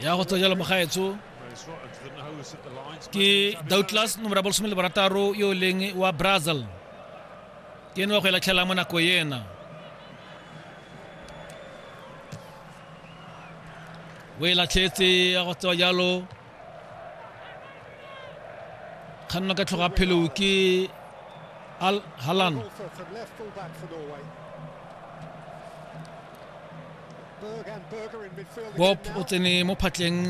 ya go tswa jalo mogaetso ke doubtless nomora bolsome le borataro yo o leng wa brazil ke ene wa go e latlhelang mo nako ena o e latlhetse ya go tswa jalo kganna ka tlhoga phelo ke al halan bob o tsene mo phatleng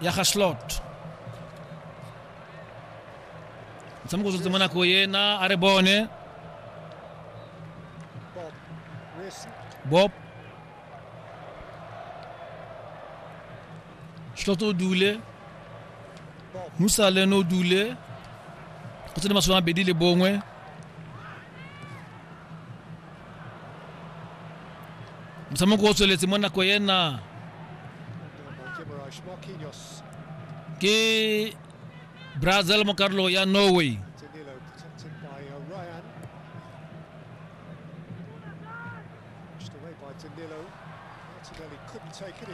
ya ga slot motshameko o tsotse mo nako ena a re bone bob Slot o dule. Musa le no dule. Go tsene masome a bedi le bongwe. Motshameko o tsweletse mo nako ena. Ke Brazil mo karolo ya Norway.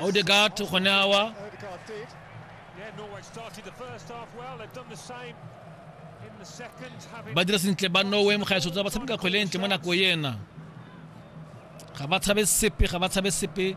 Odegaard to gone awa. ba dira sentle ba norway mogaetso tsa ba tshameka kgwele e ntle mo nako ena ga ba tshabe sepe ga ba tshabe sepe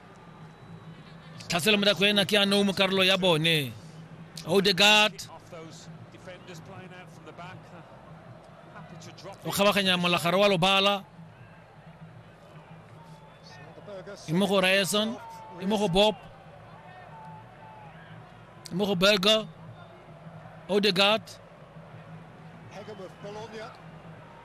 tlhaselo morago ena ke anong mo karolo ya bone odegard o kgabaganya molagare wa lobala e mo go ryerson e mo go bob e mo go burger odegard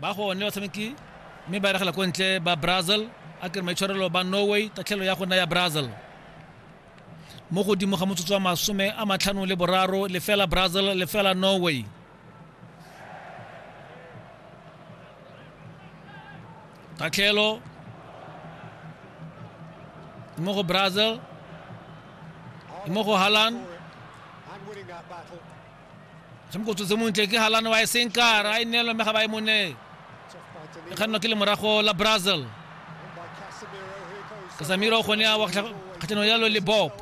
ba gone batshameki mme ba eregela ko ntle ba brazil a kere maitshwarelo ba norway tatlhelo ya gona ya brazil mo godimo ga motsotso wa masome a matlhano le boraro lefela brazil lefela norway tatlhelo mo go brazil mo go halan Semokotso se montle ke Halane wa e senkara a e neelwa mme ga ba e mone. E kgannwa ke lemorago la Brazil. Kasamiro gone a wa kgatlhanong yalo le Bob.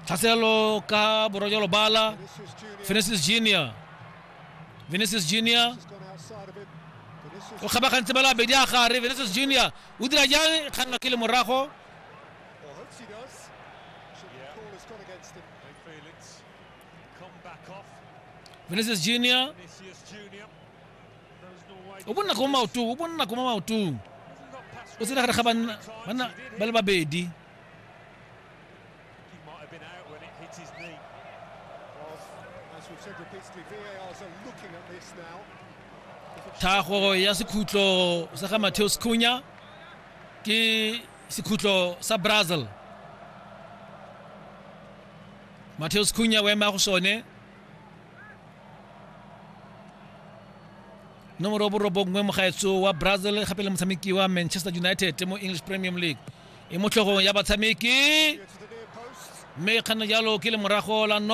Tlhaselo ka borwa jwa lobala. Vinicius Junior. Vinicius Junior o kgabagantse ba la bedi a gare Vinicius Junior o dira jang kgannwa ke lemorago vinicius junior o bonna ko maotong o bonna ko maotong o tsena gare ga banna banna ba le babedi thago ya sekhutlo sa ga matheo sekhunya ke sekhutlo sa brazil Mateus Cunha o ema go sone nomoro borobongwe mogaetso wa brazil gape le motshameki wa manchester united mo english premium league e mo tlhogong ya batshameki mme kganna jalo ke le morago la no